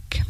Ec.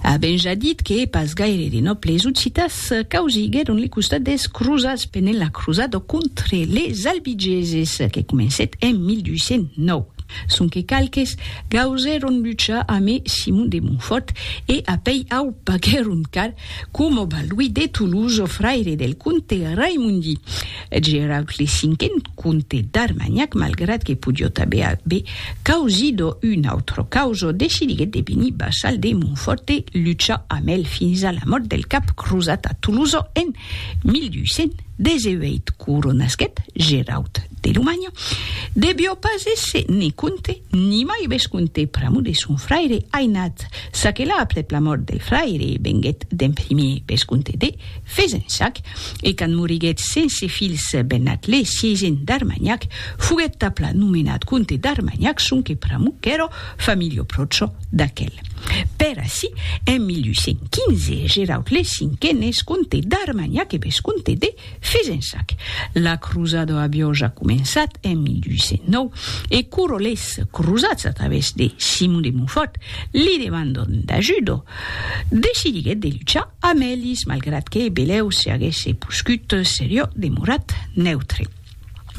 A ben ja dit que pas gaire de nòbles occitas causiguèron le costat des crosats pendent la crosada contre les albigeses que comencèt en 1209, sonque qualques gausèron luchar amé Simon de Montfòrt e apèi au paguèron car, coma Balduí de Toulouse, fraire del comte Raimondi Geraud le Cinquen, Comte d'Armagnac, malgrat que podiot aver aver causido un autre causo, decidiguèt de venir vassal de Montfòrt e luchar amb el fins a la mòrt del cap crosat a Tolosa en 1218. Coronasquèt Geraut de Lomanha, devió pas èsser ne comte, ni mai vescomte pr'amor de son fraire ainat, çaquelà aprèp la mòrt del fraire, venguèt d'en primier vescomte de. Fezensac, e quand moriguèt sense filhs Bennat le sièisen d'Armanhac, foguèt tapla nomenat comte d'Armanhac sonque pr'amor qu'èra familha pròcha d'aquel. Per ací, en 1815, Geraud le Cinquen es comte d'Armanhac e vescomte de Fezensac. La crosada aviá ja començat en 1809, e quora les crosats, a travèrs de Simon de Montfòrt, li demandon d'ajuda, decidiguèt de luchar Amelis, malgrat que Belèu se aguèsse poscut, serió demorat neutre.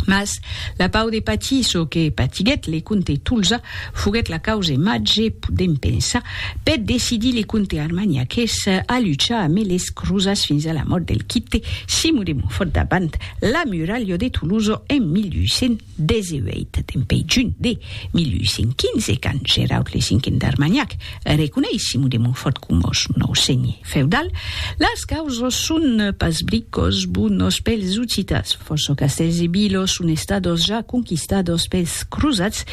Mas la pau de patir çò que patiguèt le comte Tolza foguèt la cause màger, podèm pensar, per decidir le comte armagnaqués a luchar amé les crosats fins a la mòrt del quite Simon de Montfòrt davant la muralha de Tolosa en 1800. 18 dempèi junh de 1815, quand Geraud le Cinquen d'Armagnac reconeis Simon de Montfòrt coma son nòu senhe feudal, las causas son pas bricòs bonos pels Occitats, fòrça castèls e vilas son estadas ja conquistadas pels crosats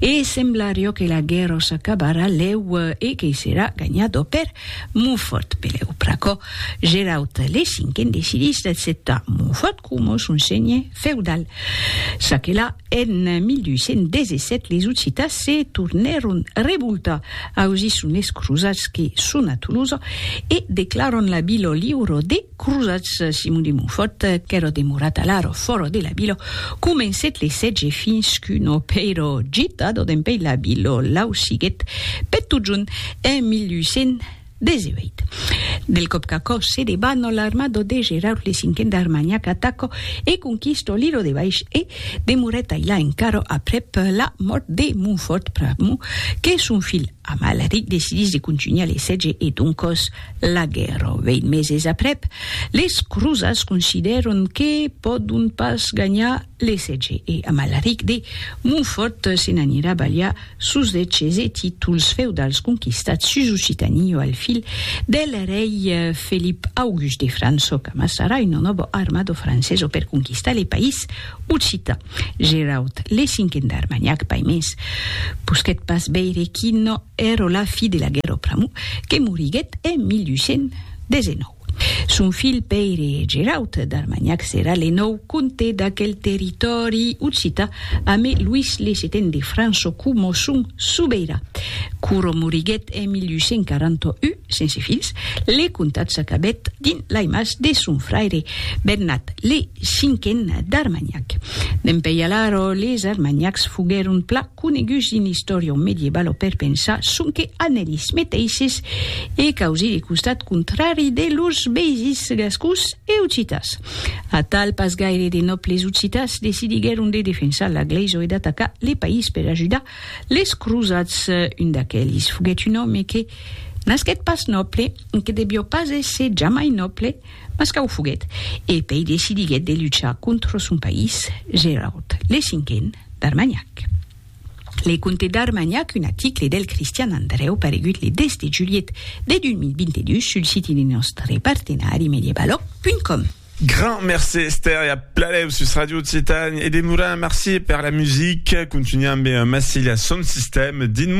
e semblariá que la guèrra s'acabarà lèu e que serà ganhada per Montfòrt. Pelèu, pr'aquò, Geraud le Cinquen decidís d'acceptar Montfòrt coma son senhe. feudal. Çaquelà, en 1217 les Occitans se tornèron revoltar ausir son es crosats que son a Tolosa e declaran la vila liura des crosats. Simon de Montfòrt, qu'èra demorat alara fòra de la vila, comencèt le sètge fins qu'una pèira gitada dempèi la vila l'ausiguèt per totjorn en 1200. 18. Del còp qu'aquò se debat, no l'armado de Geraud le cinquen d'Armagnac ataco e conquisto l'ilo de Baish e demorèt ailà encara aprèp la mòrt de Montfort pr'amor que son filh Amalric decidís de contunhar le sètge e doncòs la guèrra. Vèint meses aprèp, les crosats considèron que pòdon pas ganhar Lessètge e Amalaric de Montfòrt se n'anirà balhar sos deches e títols feudals conquistats sus Occitanie o al fil del rei Felip August de França o qu'amassarà una nòva armada francesa per conquistar le país occitan. Geraud le cinquen d'Armagnac Paimés posquèt pas veire quina èra la fi de la guèrra pr'amor que moriguèt en 1219. Son filh Pèire Geraut d'Armanhac serà le nòu comte d'aquel territòri occità amé Luís le Seten de França coma son sobeirà. Quora moriguèt en 1841, sense filhs, le comtat s'acabèt dins lai mas de son fraire Bernat le Cinquen d'Armanhac. Dempeï alara les Armanhacs foguèron pla. coneguts dins l'istòria medievalo per pensar sonque a nelis meteisses e causir le costat contrari de lors veisins gascons e occitas. Atal, pas gaire de nòbles occitas decidiguèron de defensar la glèisa e d'atacar le país per ajudar les crosats. Un d'aquelis foguèt un òme que nasquèt pas nòble, que devió pas èsser jamai nòble, mas qu'au foguèt, e pei decidiguèt de luchar contra son país, Gerard le Cinquen. d'Armagnac. Le Comte d'Armagnac, un aticle del Cristian Andrèu paregut le 10 de julhet de 2022 sul siti de nòstre partenari medievaloc.com. Grand mercé Esther e a pladèu sus Radio Occitània e demorant merci per la musica, continuam ben massir la son sistèm dins mon.